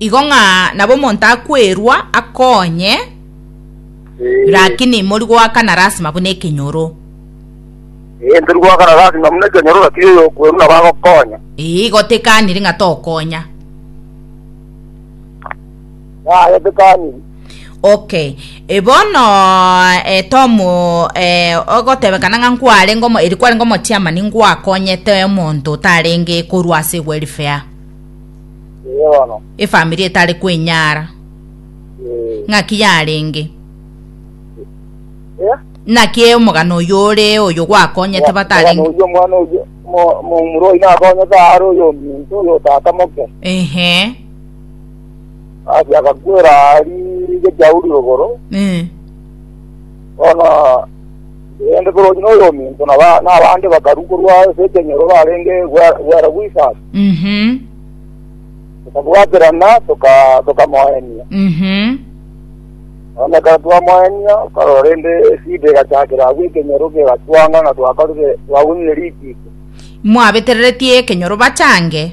Igo ng'a nabo omonto akwerwa akonye, Eh, lakini mori goakana rasima buna ekenyoro. eh, tori goakana rasima buna ekenyoro lakini oyo okwerwa nabo agokonya Igo tekaniri ng'a tokonya. nayetekaniri. Okay. Eh, bono eh, Tom eh, ogotebekana ng'a nkwarenge omo- eri kwarenge omochiamani ngwakonyete omonto otarenge korwa ase welfare Ee bono. efamiri etare kwenyara Ee. ng'aki yarenge Eh? naki omogano oyo ore oyo gwakonyete batarenge Oyo mwana oyo mo- mo- muroi nakonyete aro oyo ominto oyo otatamoke. ehe Ase agakwera riige Sauli rogoro, Eh. bono rende korokina oyo ominto na ba- na abande bakaru korwa ase ekenyoro barenge gwe- gwera gw'isasi. Mhm. Tokabwaterana toka- tokamoenia. Mhm. Bono ekero twamoenia, karora rende esida egachakera agwo ekenyoro kegatwanga ng'a twakorire twagwenyire rikiito. Mwabetereretie ekenyoro bachange.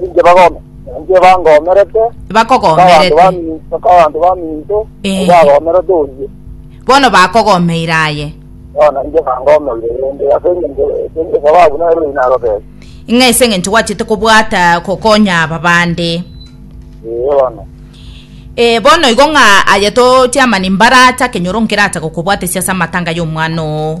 Ninche bagome, ninche bangomerete, abanto bakogomerete bami- abanto baminto Eh. bagomerete oyio. bono bakogomeire aye Bono ninche bangomeire rende ase engencho engencho sababu nere oyio nagotebia. ng'a ase eng'encho gwachete kobwata kokonya aba bande Ee bono. Eh, bono igo ng'a aye totiamani mbaracha kenyoro nkerata gokobwatesia ase amatanga y'omwana oo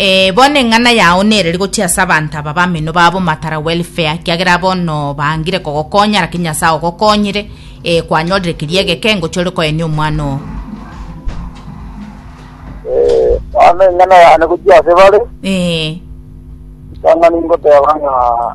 Ee, bono eng'ana yao nereri gochia ase abanto aba bameno babo matara welfare, kiagera bono bangire kogokonya, lakini Nyasae ogokonyire, ee, kwanyorire keria egeke, ngochia ore koenia omwana oo. Ee, bono eng'ana yane gochia ase bare, Ee, ritang'ani ngoteba ng'a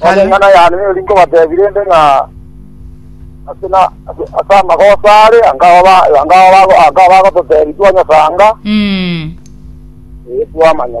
Kare. Enchana yane niyo rinkobatebi rende ng'a ase na ase ase amagoso are anga oba anga oba anga oba gototebi twanyasanga Mm. eh twamanya